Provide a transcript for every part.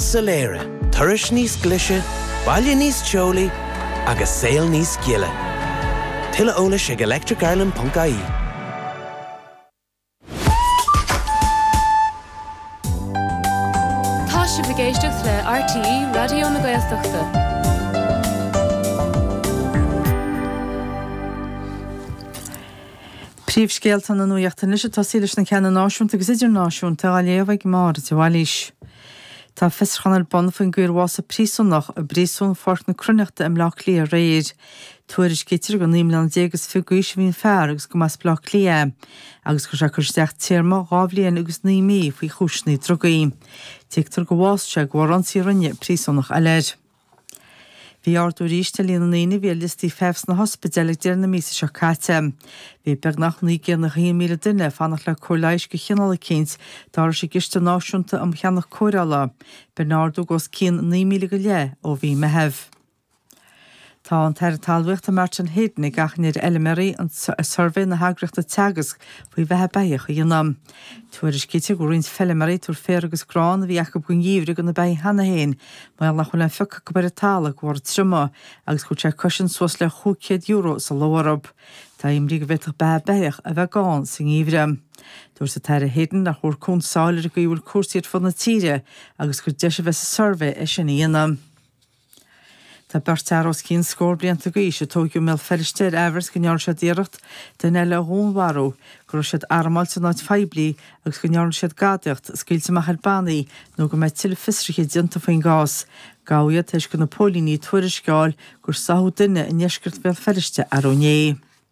soiléire, turas níos glise, baile níos teolaí agus saol níos gile. Tuilleadh eolais ag electricireland.ie. Tá sibh ag éisteacht le RTÉ Raidió na Gaeltachta. Príomhscéalta na Nuachta anois ag tosaí leis na ceanna náisiúnta agus idirnáisiúnta á léamh ag Máire de Bhailís. Tá fiosrúchán ar bun faoin gcaoi ar bhásaigh príosúnach i bPríosún Pháirc na Cruithneachta i mBleá Cliath aréir. Tuairiscítear gur naoi mbliana déag is fiche d'aois a bhí an fear agus go mba as Bleá Cliath é agus go raibh sé ag cur isteach téarma dhá bhliain agus naoi mí faoi chúiseanna drugaí. Tuigtear gur bhásaigh sé de bharr ionsaí a rinne príosúnach eile air. Bhí ardú aríst ar líon na ndaoine a bhí ar liostaí feithimh sna hospidéil ag deireadh na míosa seo caite. Bhí beagnach 901,000 duine ag fanacht le cóir leighis go chineál eicínt, dar leis an gCiste Náisiúnta um Cheannach Cóireála, b'in ardú de os cionn 9,000 go leith ó mhí Meithimh. Tá an tAire Talmhaíochta Martin Heydon ag achainí ar fheilméaraí suirbhé na heagraíochta Teagasc faoi bheatha beithíoch a dhéanamh. Tuairiscítear go bhfuil roinnt feilméaraí ag tabhairt féar agus grán a bhí acu don gheimhreadh do na beithígh cheana féin, mar nach bhfuil aon phiocadh ar an talamh de bharr triomaigh, agus go bhfuil sé ag cosaint suas le chúig chéad euro sa ló orthu. Tá imní go bhféadfadh beatha beithíoch a bheith gann sa ngeimhreadh. Dúirt an tAire Heydon nach bhfuil cuntas fós ar an gcaoi a bhfuil cúrsaí ar fud na tíre agus gur deis a bheidh sa suirbhé é sin a dhéanamh. Tá beirt fhear os cionn scór blianta d'aois a tóigeadh i mBéal Feirste ar aimhreas go ndearna siad iarracht duine eile a dhúnmharú, go raibh siad armáilte in áit phoiblí agus go ndearna siad gadaíocht, scaoilte amach ar bhannaí nó go mbeidh tuilleadh fiosruithe déanta faoin gcás. Gabhadh iad tar éis do na póilíní tuairisc a fháil gur sáthadh duine i ndeisceart Bhéal Feirste arú inné.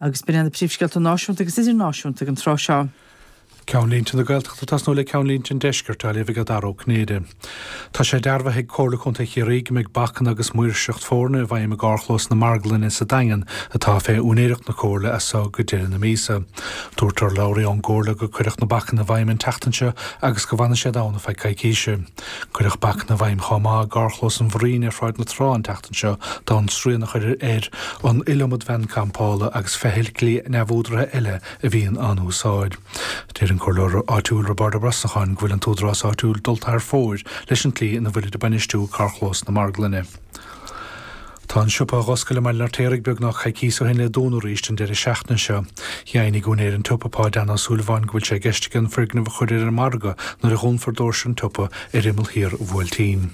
Agus b'in iad na príomhscéalta náisiúnta agus idirnáisiúnta ag an tráth seo. Ceannlínte na Gaeltachta ag tosnú le ceannlínte an Deiscirt á léamh ag Daragh Ó Cinnéide. Tá sé dearbhaithe ag Comhairle Contae Chiarraí go mbeidh bacanna agus maoirseacht foirne i bhfeidhm i gCarrchlós na Marglainne sa Daingean atá fé úinéireacht na Comhairle as so go deire na míosa. Dúirt urlabhraí ón gComhairle gur cuireadh na bacanna i bhfeidhm an tseachtain seo agus go bhfanfaidh siad ann ar feadh coicíse. Cuireadh bacanna i bhfeidhm chomh maith i gcarrchlós an Bhraín ar Shráid na Trá an tseachtain seo d'fhonn srian a chur ar an iliomad veain campála agus feithiclí neamhúdaraithe eile a bhíonn á n-úsáid. Deir an Comhairleoir áitiúil Roibeárd Ó Brosnacháin go bhfuil an t-údarás áitiúil dulta thar fóir leis an tslí ina bhfuilid ag bainistiú carrchlós na marglainne. Tá an siopa a dh'oscail i mBaile an Fheirtéaraigh beagnach coicíos ó shin le dúnadh arís an deireadh seachtaine seo. Dheimhnigh úinéir an tsiopa, Páid Dan Ó Súilleabháin, go bhfuil sé i gceist aige an foirgneamh a chur ar an margadh nuair a dhúnfar doirse an tsiopa ar imeall thiar Bhuailtín.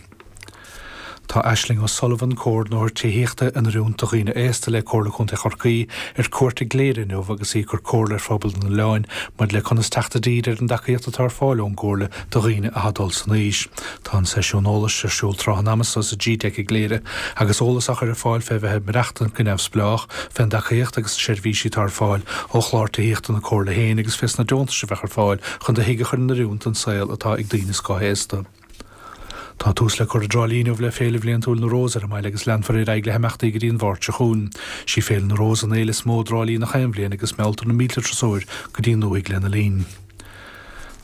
Tá Aisling O Sullivan, Comhordnóir Tithíochta in Oiriúint do Dhaoine Aosta le Comhairle Contae Chorcaí, ar cuairt i gCléire inniu agus í ag cur comhairle ar phobal an oileáin maidir le conas teacht i dtír ar an dtacaíocht atá ar fáil ón gComhairle do dhaoine atá ag dul san aois. Tá an seisiún eolais ar siúl tráth an ama so sa GTeic i gCléire agus eolas á chur ar fáil fé bheith ag maireachtaint go neamhspleách fén dtacaíocht agus na seirbhísí atá ar fáil ó chlár tithíochta na Comhairle féin agus fé sna deontais a bheadh ar fáil chun do thig a chur in oiriúint don saol atá ag daoine scothaosta. Tá tús le cur i dTrá Lí inniu le Féile Bhliantúil na Rós ar an mbaile agus leanfar ar aghaidh le himeachtaí go dtí an Mháirt seo chugainn. Sí Féile na Rós an fhéile is mó i dTrá Lí na haon bhliain agus mealltar na mílte turasóir go dtí an dúthaigh lena linn.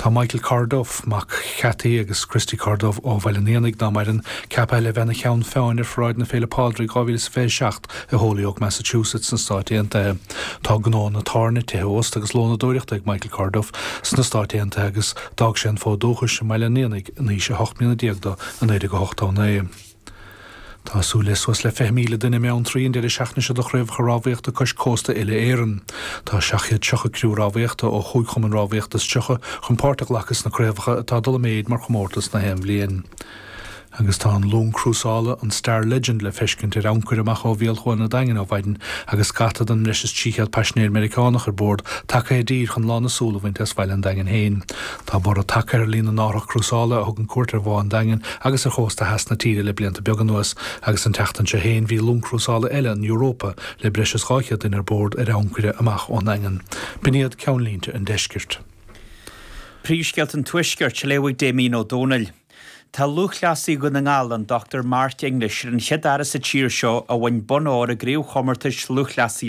Tá Michael Corduff, mac Chathy agus Christy Corduff ó Bhaile an Éanaigh, ná maireann, ceaptha le bheith ina cheann feadhain ar Pharáid na Féile Pádraig 2027 i Holyoke, Massachusetts sna Stáit Aontaithe. Tá gnóanna tábhairne, tithe ósta agus lónadóireachta ag Michael Corduff sna Stáit Aontaithe agus d'fhág sé an fód dúchais i mBaile an Éanaigh in aois a hocht mbliana déag dó i 1989. Tá súil le suas le 20,000 duine i mBeanntraí an deireadh seachtaine seo do Chraobhacha Rámhaíochta Cois Cósta Uile Éireann. Tá 730 criú rámhaíochta ó chúig chumann rámhaíochta is tríocha chun páirt a ghlacadh sna craobhacha atá ag dul i méid mar chomórtas na haon bhliain agus tá an long chrúsála, an Star Legend, le feiscint ar ancaire amach ó bhéal Chuan an Daingin ó mhaidin agus scata den mbreis is 300 paisinéir Meiriceánach ar bord tagtha i dtír chun lán na súl a bhaint as bhaile an Daingin féin. Tá borradh tagtha ar líon na n-árthach crúsála a thugann cuairt ar Bhá an Daingin agus ar chósta theas na tíre le blianta beaga anuas, agus an tseachtain seo féin bhí long chrúsála eile, an Europa, le breis is 200 duine ar bord, ar ancaire amach ón nDaingean. B'in iad ceannlínte an Deiscirt. Príomhscéalta an Tuaiscirt, á léamh ag Damien Ó Dónaill. Tá lúthchleasaí Dhún na nGall, an Dr Mark English, ar an chéad fhear as an tír seo a bhain bonn óir i gCraobhchomórtais Lúthchleasaí